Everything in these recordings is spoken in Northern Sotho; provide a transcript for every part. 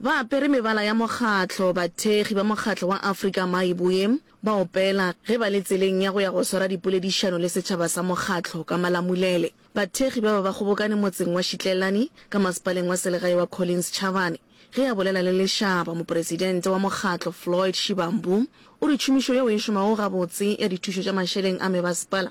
Ba apere mebala ya mokgatlo, bathekgi ba mokgatlo wa Afrika Maiboe ba opela ge ba le tseleng ya go ya go swara dipoledišano le setšhaba sa mokgatlo ka Malamulele. Bathekgi ba ba ba kgobokane motseng wa Šitlelani ka masepaleng wa selegae wa Collins Chavani. Ge a bolela le lešaba, mopresidente wa mokgatlo Floyd Shivambu o re tšhomišo yeo e šomago gabotse ya dithušo tša mašeleng a mebasepala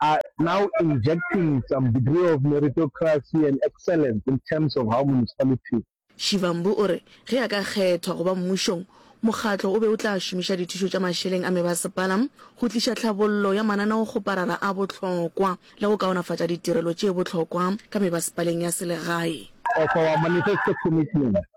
are now injecting some degree of meritocracy and excellence in terms of how municipalities Shivambu o re ge a ka kgethwa go ba mmušong, mokgatlo o be o tla šomiša dithušo tša mašeleng a mebasepala go tliša tlhabollo ya mananeokgoparara a bohlokwa le go kaonafatša ditirelo tše bohlokwa ka mebasepaleng ya selegae. of our manifesto commitments.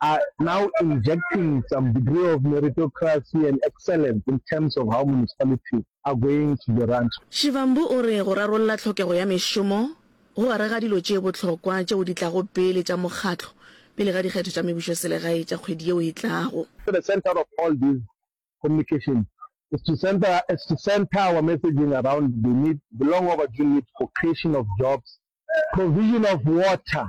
are now injecting some degree of meritocracy and excellence in terms of how municipalities are going to be run. Shivambu o re go rarolla tlhokego ya mešomo go gare ga dilo tše bohlokwa tšeo di tlago pele tša mokgatlo pele ga dikgetho tša mebušoselegae tša kgwedi yeo e tlago. At the centre of all these communications is to centre is to centre our messaging around the need, the long overdue need for creation of jobs, provision of water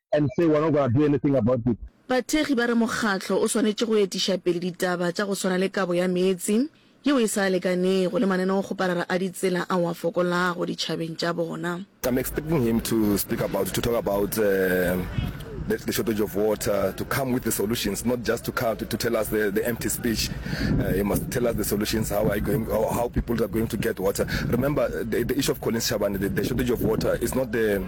and say we're not gonna do anything about it. Bathekgi ba re mokgatlo o swanetše go etiša pele ditaba tša go swana le kabo ya meetse yeo e sa lekanego le maneneokgoparara a ditsela ao a fokolago ditšhabeng tša bona. I'm expecting him to speak about, to talk about the, the shortage of water, to come with the solutions, not just to come to, to tell us the, the empty speech. Uh, he must tell us the solutions, how are you going, how, how people are going to get water. Remember, the, the issue of Collins Shabane, the, the shortage of water is not the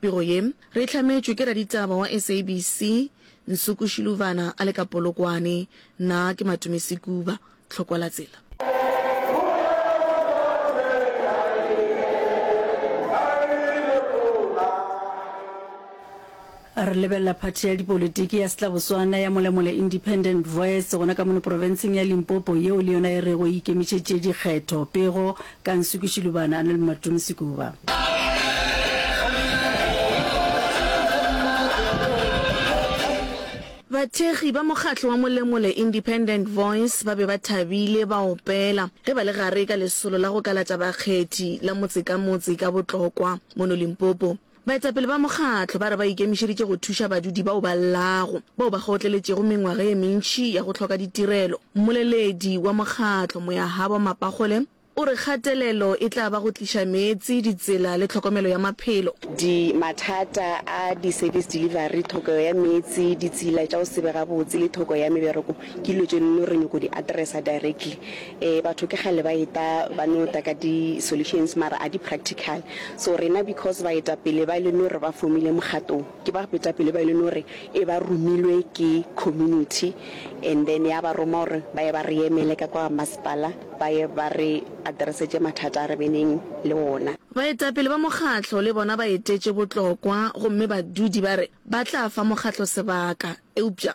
Pego ye, re e hlametšwe ke raditaba wa SABC, Nsuku Shiluvana a le ka Polokwane. Nna ke Matumé Sekuba. Tlhokola tsela. Re lebelela phathi ya dipolitiki ya Setlabotswana ya Molemole Independent Voice gona ka mono profenseng ya Limpopo yeo le yona e rego e ikemišetše dikgetho. Pego, Ka Nsuku Shilubana a na le Mmatumi Sekuba. Bathekgi ba mokgatlo wa Molemole Independent Voice ba be ba thabile ba opela ge ba le gare ka lesolo la go kalatša bakgethi la motse ka motse ka botlokwa mono Limpopo. Baetapele ba mokgatlo ba re ba ikemišeditše go thuša badudi bao ba llago, bao ba kgaotleletšego mengwaga ye mentši ya go hloka ditirelo. Mmoleledi wa mokgatlo, Moyahabo Mapakgole, o re kgatelelo e tla ba go tliša meetse, ditsela le tlhokomelo ya maphelo. Di mathata a di-service delivery, thokego ya meetse, ditsela tša go se be gabotse le thoko ya mebereko Ke dilo tše no re nyoko di addressa directly. Eh batho ke kgale ba eta ba no ta ka di solutions mara a di practical. So rena because baetapele ba e le no re ba formile mokgatlo o, ke ba betapele ba e le no re e ba romilwe ke community and then ya ba roma gore ba ye ba re emele ka kwa masepala ba ye ba re addressetše mathata a re beneng le wona. Baetapele ba mokgatlo le bona ba etetše botlokwa gomme badudi ba re ba tla fa mokgatlo sebaka eupša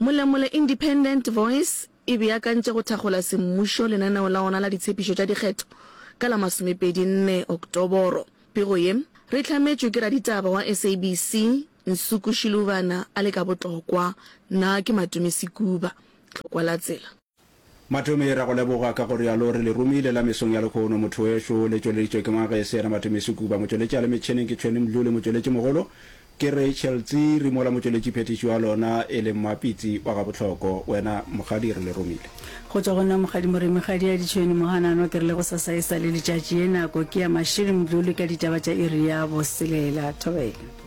Molemole Independent Voice e beakantše go thakgola semmušo lenaneo la ona la ditshepišo tša dikgetho ka la masomepedi nne Oktoboro. Pego ye, re hlametšwe ke raditaba wa SABC, Nsuku Shiluvana a le ka botlokwa, Na ke Matumisi Kuba? Tlhokwa la tsela. Matome, ra go leboga ka go realo re le romile la mesong ya lekhono mothoweso, le tšweleditšwe ke Magese yena Matome Sekuba, motšweletši a le metšheneng ke Tshweni Mdluli, motšweletši mogolo ke Rachel Tsiri mola motšweletši phethiši wa lona e le Mmapitsi wa Gabohloko. Wena Mokgadi re le romile. Go tšwa go nna Mokgadi Moremi Kgadiadi Tshweni Mohanano ke re le go sasa e sa le letšatši ye nako ke ya Mashiri Mdluli ka ditaba tša iri ya boselela. Thobela.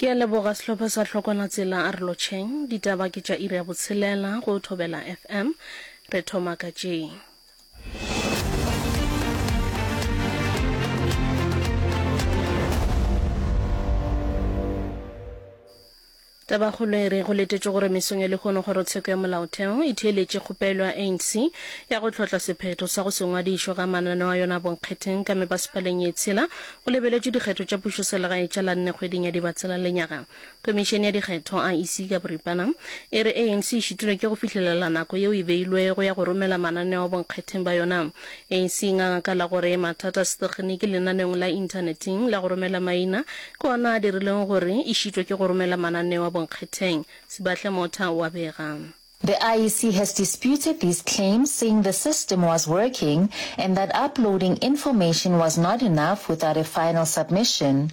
Ke a leboga sehlopha sa Hlokwana Tsela a re lotšheng. Ditaba ke tša iri ya botshelela go Thobela FM. Re thoma ka tše. Tabakgolo e re go letetšwe gore mesong ya lehono Kgorotsheko ya Molaotheo e theeletše kgopelo ya ANC ya go hlotla sephetho sa go se ngwadišwe ga mananeo a yona a bonkgetheng ka mepasepaleng ye tshela go lebeletšwe dikgetho tša pušoselegae tša la nne kgweding ya Dibatsela lenyaga. Komišene ya dikgetho, IEC, ka boripana e re ANC e šitilwe ke go fihlelela nako yeo e beilwego ya go romela mananeo a bonkgetheng ba yona Anc a gakala gore mathata a setegeniki lenaneong la inthaneteng la go romela maina ke ona a dirileng gore e šitwe ke go romela mananeo a bonkgetheng, Sibahle Motha o a bega. The IEC has disputed these claims saying the system was working and that uploading information was not enough without a final submission.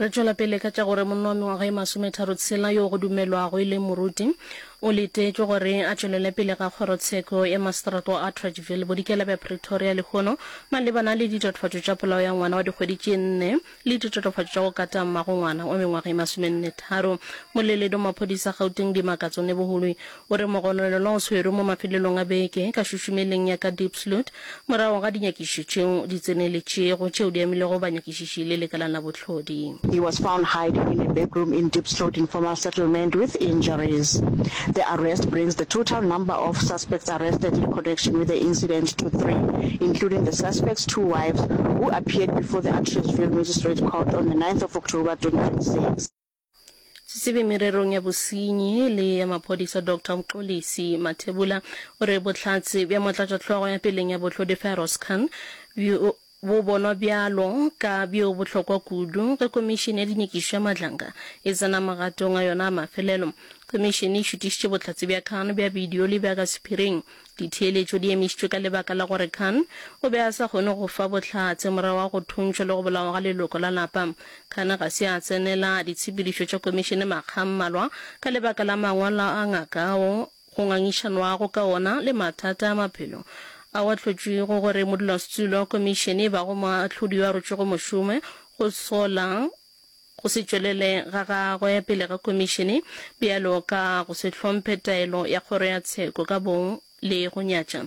re tšwela pele ka tša gore monna wa mengwaga e masometharo tshela yo go dumelwago e leng moruti o letetšwe gore a tšwelele pele ga kgorotsheko ya maseterata wa atteridgeville bodikela bja pretoria lehono malebana le ditatofatšo tša polao ya ngwana wa dikgwedi tše nne le ditatofatšo tša go kata mmagongwana wa mengwaga e masomennetharo. Moleledi wa maphodisa Gauteng Dimakatso Neboholoi o re mogononelwa o swerwe mo mafelelong a beke ka šušumeleng ya ka Diepsloot morago ga dinyakišišo tšeo di tseneletšego tšeo di amilego banyakišiši le lekala la bohlodi. He was found hiding in a backroom in Diepsloot informal settlement with injuries. The arrest brings the total number of Suspects arrested in connection with the incident to three, including the suspect's two wives, who appeared before the Atteridgeville Magistrate Court on the ninth of October, twenty twenty six. Setsebi mererong ya bosenyi le ya maphodisa Doctor Mxolisi Mathebula o re bohlatse bja motlatšahlogo ya peleng ya bohlodi Firoz Khan bjo Bo bonwa bjalo ka bjo bohlokwa kudu ge Komišene ya Dinyakišo ya Matlanga e tsena magatong a yona a mafelelo. Komišene e šutišitše bohlatse bja Khan bja bidio le bja ka sephiring. Ditheeletšo di emišitšwe ka lebaka la gore Khan o be a sa kgone go fa bohlatse morago ga go thuntšhwa le go bolawa ga leloko la lapa. Khan ga se a tsenela ditshepedišo tša Komišene makga a mmalwa ka lebaka la mangwalo a ngaka ao go ngangišanwago ka wona le mathata a maphelo ao a hlotšwego gore modulasetulo wa Komišene e bago moahlodi yo a rotšwego mošome go hlola go se tšwelele ga gagwe pele ga Komišene bjalo ka go se hlomphe taelo ya Kgoro ya Tsheko ka bong le go nyatša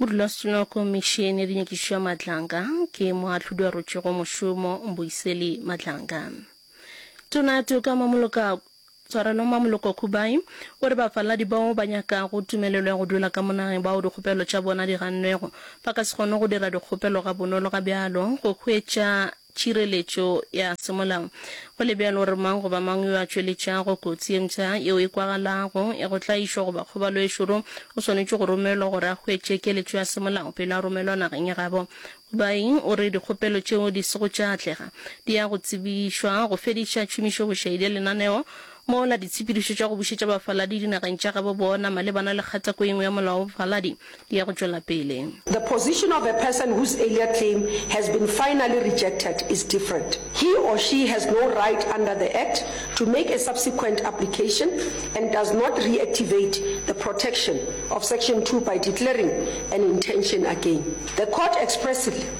Modulasetulong wa Komišene ya Dinyakišišo ya Matlanga ke moahlodi wa rotšego mošomo Mbuyiseli Matlanga. Tona Toka Mamoloka Tshwarelo Mamoloko Khubai o re bafaladi bao ba nyakago tumelelo ya go dula ka mo nageng bao dikgopelo tša bona di gannego ba ka se kgone go dira dikgopelo gabonolo ga bjalo go hwetša tšireletšo ya semolao. Go le bjalo, gore mang goba mang yo a tšweletšago kotsi ye mpsha yeo e kwagalago ya go tlaišwa goba kgobalo e šoro o swanetše go romelwa gore a hwetše keletšo ya semolao pele a romelwa nageng ya gabo. Kubai o re dikgopelo tšeo di sego tša atlega di ya go tsebišwa go fediša tšhomišo bošaedi ya lenaneo Mola ditshepedišo tša go bušetša bafaladi dinageng tša gabo bona malebana le kgatako ye nngwe ya molao wa bofaladi di ya go tšwela pele. The position of a person whose earlier claim has been finally rejected is different. He or she has no right under the Act to make a subsequent application and does not reactivate the protection of Section Two by declaring an intention again. The Court expressly.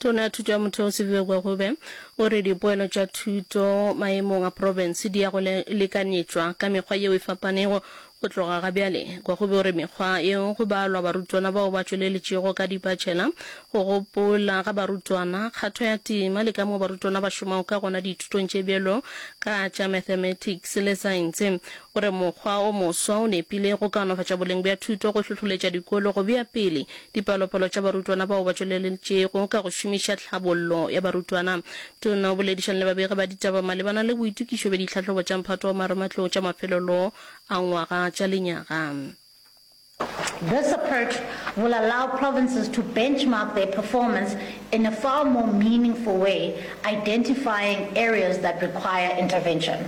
Tona ya Thuto ya Motheo Sibivekwe Kgube o re dipoelo tša thuto maemong a profense di ya go lekanetšwa ka mekgwa yeo e fapanego go tloga ga bjale. Kgube o re mekgwa yeo go balwa barutwana bao ba tšweletšego ka dipatšhela, go gopola ga barutwana, kgatho ya tema le kamoo barutwana ba šomago ka gona dithutong tše bjalo ka tša mathematics le saense. O re mokgwa o moswa o nepile go kaonafatša boleng bja thuto, go hlohloletša dikolo go bea pele Dipalopalo tša barutwana bao ba tšweleletšego ka go šomiša Tlhabollo ya Barutwana. Tona o boledišana le babegi ba ditaba malebana le boitokišo bja ditlhahlobo tša mphato wa marematlou tša mafelelo a ngwaga tša lenyaga. This approach will allow provinces to benchmark their performance in a far more meaningful way, identifying areas that require intervention.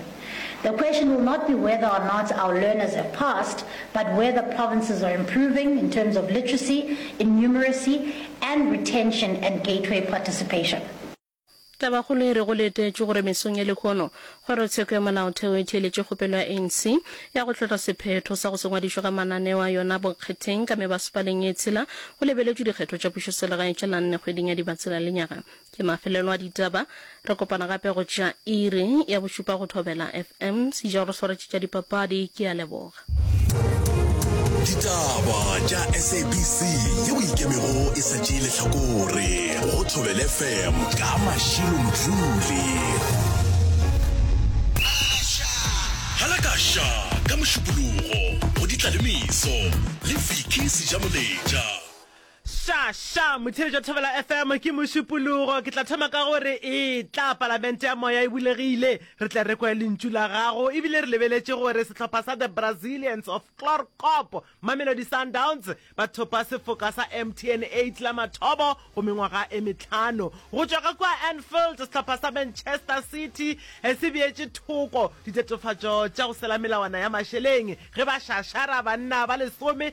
The question will not be whether or not our learners have passed, but whether provinces are improving in terms of literacy, innumeracy and retention and gateway participation. Tabakgolo e re go letetšwe gore mesong ya lehono Kgorotsheko ya Molaotheo e theeletše kgopelo ya ANC ya go hlotla sephetho sa go se ngwadišwe ga mananeo a yona bokgetheng ka mebasepaleng e tshela go lebeletšwe dikgetho tša pušoselegae tša la nne kgweding ya Dibatsela lenyaga Ke mafelelo a ditaba. Re kopana gape go tša iri ya bošupa go Thobela FM. Sejao re swaretše tša dipapadi. Ke a leboga. Ditaba tša SABC yeo e ikemego e sa tšee lehlakore go Thobela FM ka Mashilo Mdluli. Halakasha ka Mošupologo go Ditlaleimiso le Vicky Sejamoletša. Sha, sha, motheeletši wa Thobela FM ke mošupologo. Ke tla thoma ka gore e tla palamente ya moya e bulegile. Re tla re kwe lentšu la gago ebile re lebeletše gore sehlopha sa The Brazilians of Chlorkop, Mamelodi Sundowns, ba thopa sefoka sa MTN 8 la mathomo go mengwaga e metlhano. Go tšwa ka kua Anfield, sehlopha sa Manchester City se beetše thoko ditatofatšo tša go sela melawana ya mašeleng ge ba šašara banna ba lesome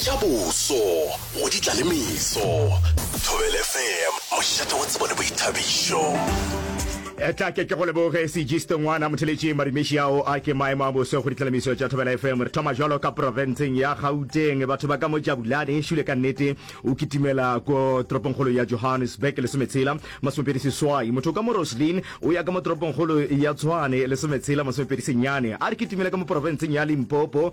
Tša boso go di tla le meso. Thobel FM, mošate wa tsebo le boithabišo. Eh, tla ke ke go leboge segiste ngwana motheletše marimeši ao a ke maemo a boso go ditlelemiso tša thobela fm re thoma jalo ka profenseng ya gauteng batho ba ka mo jabulane šule ka nnete o kitimela ko toropongkgolo ya johannesburg lesometshela masomepedi seswai motho ka mo roslin o ya ka mo toropongkgolo ya tshwane lesometshela masomepedi senyane a re kitimele ka mo profenseng ya limpopo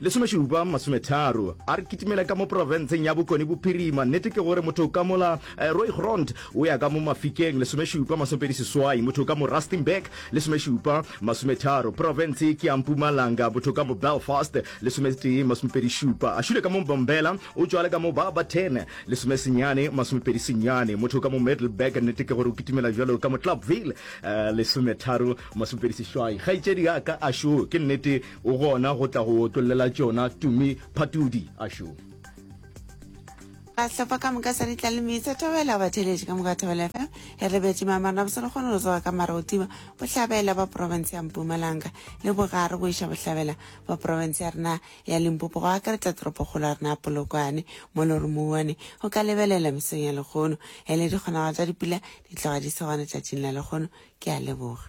Lesomešupa masometharo a re kitimela ka mo profenseng ya Bokone Bophirima. Nnete ke gore motho ka mola eh, Rooigrond o ya ka mo Mafikeng, lesomešupa masomepedi seswai, motho ka mo Rustenburg, lesomešupa masometharo. Profense ke ya Mpumalanga, motho ka mo Belfast, lesometee masomepedi šupa. A šule ka mo Mbombela, o tšwale ka mo Barberton, lesomesenyane masomepedi senyane, motho ka mo Middelburg. Nnete ke gore o kitimela jalo ka mo Clubville, eh, lesometharo masomepedi sešwai. Kgaetšedi ya ka a šo, ke nnete O gona go tla go otollela tšona, Tumi Phatudi a šo. Sehlopha ka moka sa ditlalemi sa Thobela ba theeletše ka moka Thobela FM e rebetše mamarna a bosele kgone go tsoga ka mara go tima bohlabela ba profense ya Mpumalanga le bogare go iša bohlabela ba profense ya rena ya Limpopo go akaretša toropokgolo ya rena ya Polokwane mo le gore mouwane o ka lebelela mesong ya lekgono e le dikgonago tša dipula di tloga di se gona tšatšing la lekgono ke a leboga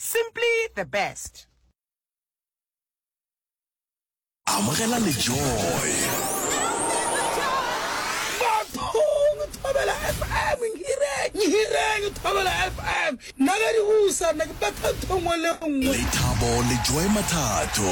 Simply the best. Amogela le joy. Bathong Thobela FM Nhireng Nhireng Thobela FM Nna ka di usa nna ke batha ntho nngwe le nngwe. Lethabo le Joy Mathato.